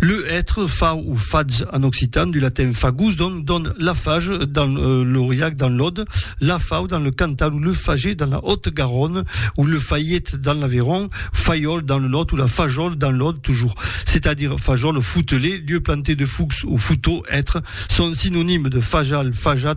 Le hètre, fau o fatz en occitan, du latin fagus, don, don la fage dans l'Auriac, dans l'Aude, la fau dans le Cantal ou le fager dans la Haute-Garonne ou le faiet dans l'Aveyron, faiòl dans le Lot ou la fajòl dans l'Aude toujours. C'est-à-dire fajòl o foutelet, lieu planté de foucs ou fouteaux, hètre, son synonyme de fajal, fajat,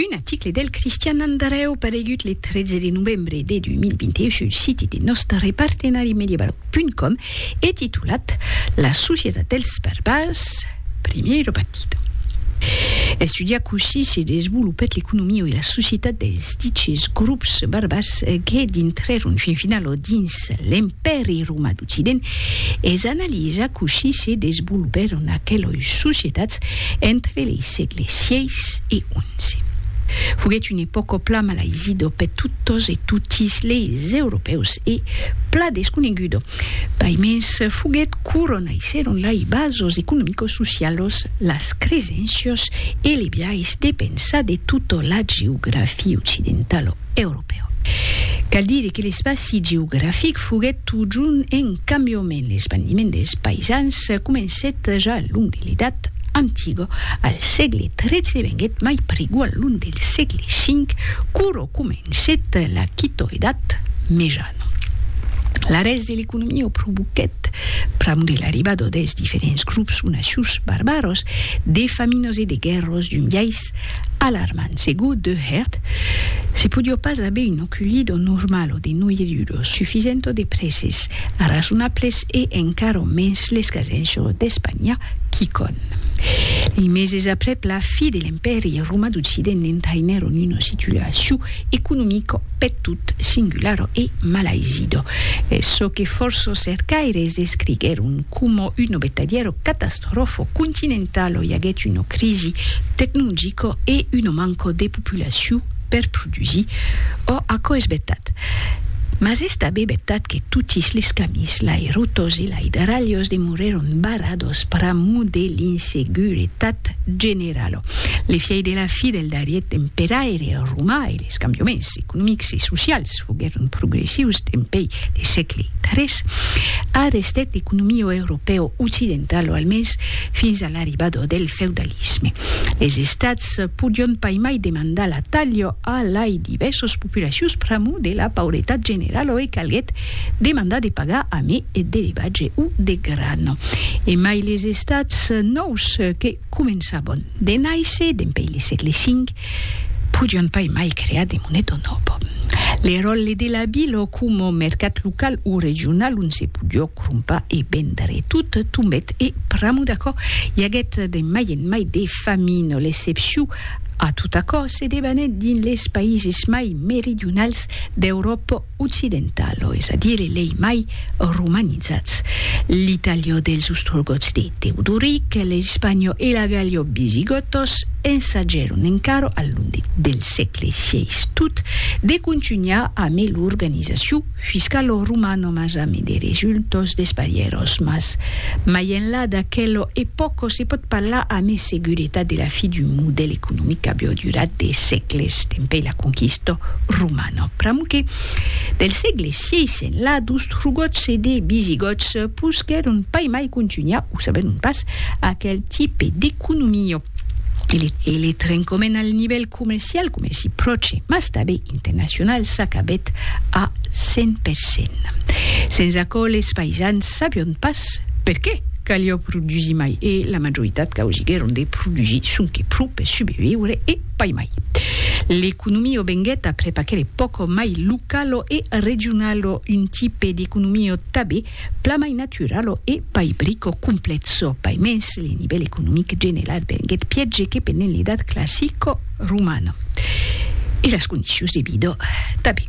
Un aticle del Cristian Andrèu paregut le 13 de novembre de 2021 sul siti de nòstre partenari mediablog.com e titulat La societat dels barbars, primeiro partido. Estudiar cossí se desvolopèt l'economia e la societat dels diches grops barbars que dintrèron fin finala dins dins l'Empèri Romà d'Occident, es analiza cossí se desvolopèron aqueloi societats entre lei sègle sièis e onze. Foguèt un epòca pla malaisido per totos e totis leis europèus e pla desconegudo, paimens foguèt quorò naissèron lei basos economicos socialos, las cresencios e lei biais de pensar de tota la geografia occidentala. europèu. Cal dire que l'espaci geografic foguèt totjorn en cambiament, l'espandiment dels païsans comencèt ja al long de l'Edat Antiga, al sègle XIII e venguèt mai prigu al long del sègle V, quora comencèt la Quitòedat Mejana. L'arrèst de l'economia o provoquèt, pr'amor de l'arribada dels diferents grops o nacius barbaras, de faminas e de guèrras d'un biais Alarmant, segur de hèrt, se podió pas aver un oculí d'o normal o de noiruro sufisent o de prèses arrasonables e encara mens l'escasenço d'Espanha, quicòm. Li meses aprèp la fi de l'Empèri Roma d'Occident n'entainèron una situacion economica peth tot singulara e malaisida, çò que fòrça cercaires descriguèron coma un obetadièro catastrofal. Rofo continentalo i aguèt una crisi tecnologica e una manca de populacion per produsir. Ò, aquò es vertat. Mas es tanben vertat que totis les camins, lai rotas e lai darralhas demorèron barradas pr'amor de l'inseguretat generala. Le fièi de la fi del darrier emperaire romà e les cambiaments economics e socials foguèron progressius dempèi de sègle tres, a restet l'economia europèo occidental o almens fins a l'arribada del feudalisme. Les estats podion pas mai demandar la talha a lai divèrsas populacions pr'amor de la pauretat generala e calguèt demandar de pagar a mai d'elevatge o de grana. Emai les estats nòus que Començabon de nàisser dempèi le sègle cinc, podion pas emai crear de moneton òp. Le ròlle de la vila coma mercat local o regional ont se podió crompar e vendre tot tombèt e pr'amor d'aquò i aguèt de mai en mai de famina. L'excepciu a tot aquò se debanèt dins les païses mai meridionals d'Euròpa. occidental, o es a dire lei mai romanizats, l'italiò dels Ostrogòts de Teodoric, l'Ispanio e l'Agaliò Bisigòtos, ensagèron encara al long del sègle xvi tot de contunhar amé l'organizacion fiscalò romano mas amé de resultòs desparièròs mas mai enlà d'aquelò epòco se pòt parlar amé seguretat de la fi d'un modèl economic qu'abiò durat de sègles dempèi la conquista romana. No, pr'amor que, del sègle xvi enlà, d'Ostrogòts e de Visigòts posquèron pas mai contunhar, o saberon pas, aquel tipe d'economia. E le trencament al nivèl comercial, comèrci pròche, mas tanben internacional, s'acabèt a cent per cent. Sens aquò, les païsans sabion pas perqué caliá produsir mai e la majoritat causiguèron de produsir sonque pro per subreviure e, Pai mai. L'economio venguèt aprèp aquele pòco mai localo e regionalo, un tipe d'economio tabé plan mai naturalo e pai brico complètzo. Pai mens, le nivèl economic general venguèt piège que pendent l'edat classico romano e las condicions de vida tabé.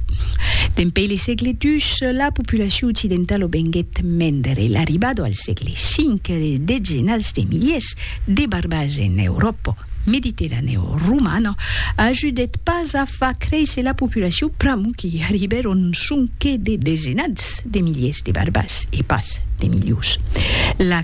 Dempei le sègle dus, la populacion occidentalo venguèt mendre. L'arribado al sègle cinc de dezenats de miliers de barbage en Euròpa mediterraneo-romana ajudèt pas a far créisser la populacion pr'amor qu'i arribèron sonque de desenats de miliers de barbars e pas de milions. La